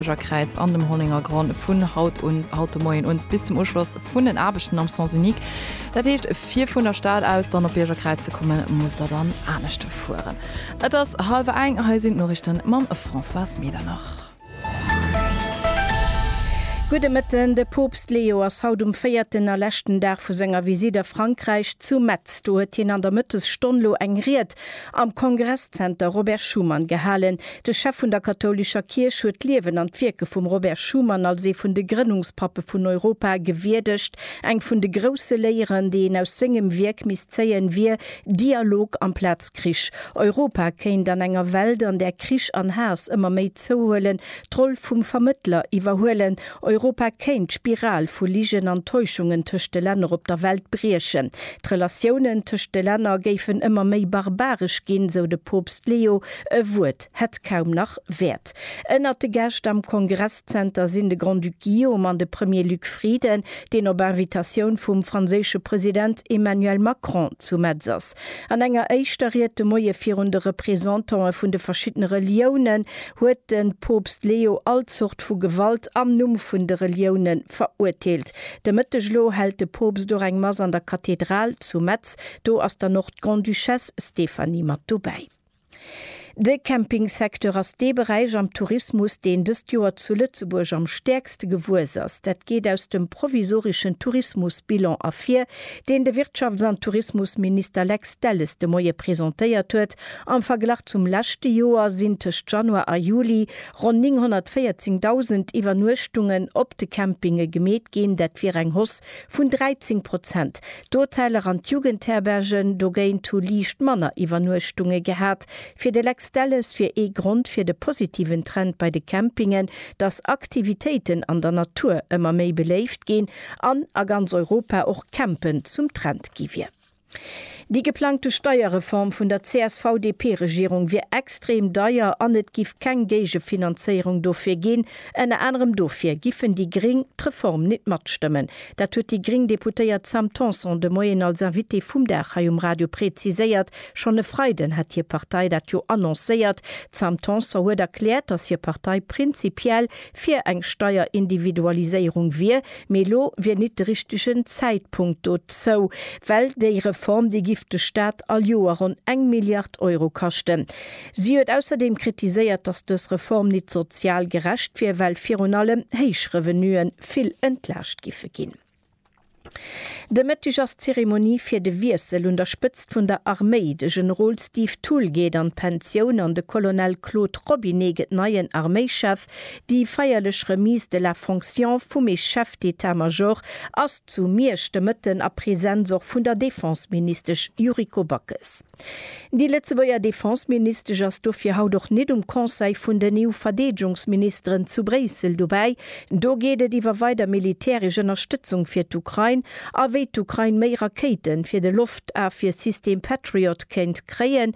Kräiz an dem Hollenger Gronn vun haut un, haut de Moien un, bis zum Uschloss vun den Aarbechten am Sens unique. Dat heescht, fir vun der Stad aus dann op Biergerkräiz ze kommen, musst der dann anescht fueren. Et ass hallwer eng, hei sinn d'Noriichten mam Françoise Medernach. Gudde Mëtten. De Poopst Leo ass haut um véierten a leschten Dag vu senger Visitt a Frankräich zu Metz. Do huet hien an der Mëttesstonn lo eng Ried Am Kongresszenter Robert Schuman gehalen. De Chef vun der kathoulescher Kierch huet d'Liewen an d'Wierke vum Robert Schuman als ee vun de Grënnungspappe vun Europa gewierdegt. Eng vun de grousse Léieren, déi een aus sengem Wierk misst zéien, wier, Dialog amplaz Krich. Europa kéint an enger Welt, an där Krich an Haass ëmmer méi zouhuelen, d'Roll vum Vermëttler iwwerhuelen. Europa kéint d'Spiral vu Ligen an Täuschungen tëscht de Länner op der Welt briechen. D'Relatiounen tëscht de Länner géifen ëmmer méi barbaresch ginn, sou de Poopst Leo. E Wuert hätt kaum nach Wäert. Ënnert de Gäscht am Kongresszenter sinn de Grand-Duc Guillaume an de Premier Luc Frieden, deen op Invitatioun vum franséische President Emmanuel Macron zu Metz ass. An enger éischter Ried de Moie virun de Representantë vun de verschiddene Reliounen huet de Poopst Leo all Zort vu Gewalt am Numm vun de Relioune verurteelt. De Mëtteg elo hält de Poopst och eng Mass an der Kathedral zu Metz. Do ass dann och d'Grande-Duchesse Stéphanie mat dobäi. De Campingsecteur ass dee Beräich am Tourismus, deen dëst Joer zu Lëtzebuerg am stäerkste gewuess ass. Dat geet aus dem provisoreschen Tourismusbilan ervir, deen de Wirtschafts an Tourismusminister Lex Delles de Moie presentéiert huet. Am Verglach zum leschte Joer sinn tëscht Januar a Juli ronn 914.000 Iwwernuechtungen op de Campinge gemeet ginn. Dat wier eng Hausse vun 13 Prozent. D'Hoteller an d'Jugendherbergen dogéint hu liicht manner Iwwernuechtunge gehat. Fir de Lex Delles wier ee Grond fir de positiven Trend bei de Campingen, datt Aktivitéiten an der Natur ëmmer méi beléift ginn an a ganz Europa och Campen zum Trend gi wier. Déi geplangte Steierreform vun der CSV-DP-Regierung wier extrem deier an et giff keng Géigefinanzéierung dofir ginn. Ënner anerem dofir giffen déi Gréng d'Reform nit matstëmmen. Dat huet déi gréng Deputéiert Sam Tanson de Moien als Invitée vum Dag hei um Radio präziséiert. Schonn e Freiden hätt hir Partei dat jo annoncéiert. D'Sam Tanson huet erkläert, datt hir Partei prinzipiell fir eng Steierindividualiséierung wier. Mee elo wier nit de richtegen Zäitpunkt dozou, well déi Reform, déi giff de Staat all Joer ronn eng Milliard Euro kaschten. Si huet ausserdeem kritiséiert, datt dës Reform nit sozial gerecht wier, well virun allem héich Revenue vill entlaascht giffe ginn. De Mëtteg ass d'Zeremonie fir de Wiessel un der Spëtzt vun der Arméi. De Generol Steve Thull geet an d'Pensioun an de Colonel Claude Robinet gëtt neien Arméischef. Déi feierlech Remise de la fonction vum e Chef d'État-Major ass zu Miersch de Mëtten a Presenz och vun der Defenseministesch Yuriko Backes. Déi Lëtzebuerger Defenseministesch ass dofir haut och nit um Conseil vun den EU-Verdeedegungsministeren zu Bréissel dobäi. Do geet et iwwer weider militäresch Ënnerstëtzung fir d'Ukrain a wéi d'Ukrain méi Rakéiten fir de Loftafwier-System Patriot kéint kréien,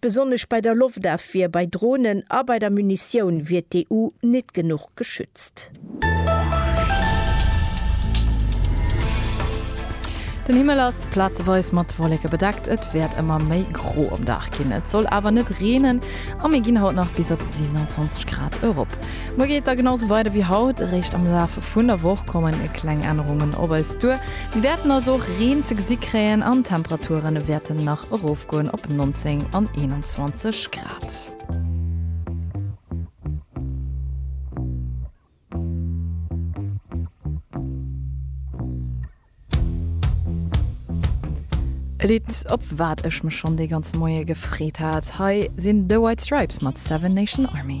Besonnesch bei der Loftafwier, bei Dronen a bei der Munitioun wier d'EU nit genuch geschützt. Den Himmel ass plazeweis mat Wolleke bedeckt, et wäert ëmmer méi gro um Dag ginn. Et soll awer net reenen a mir ginn haut nach bis op 27 Grad erop. Muer geet da genau sou weider wéi haut. Eréischt am Laf vun der Woch kommen kleng Ännerungen op eis duer. Mir wäerten also och Reen ze gesi kréien an d'Temperature wäerten nach erofgoen op 19 an 21 Grad. E Lidd, op wat ech mech schonn dee ganze Moie gefreet hat. Hei sinn The White Stripes mat Seven Nation Army.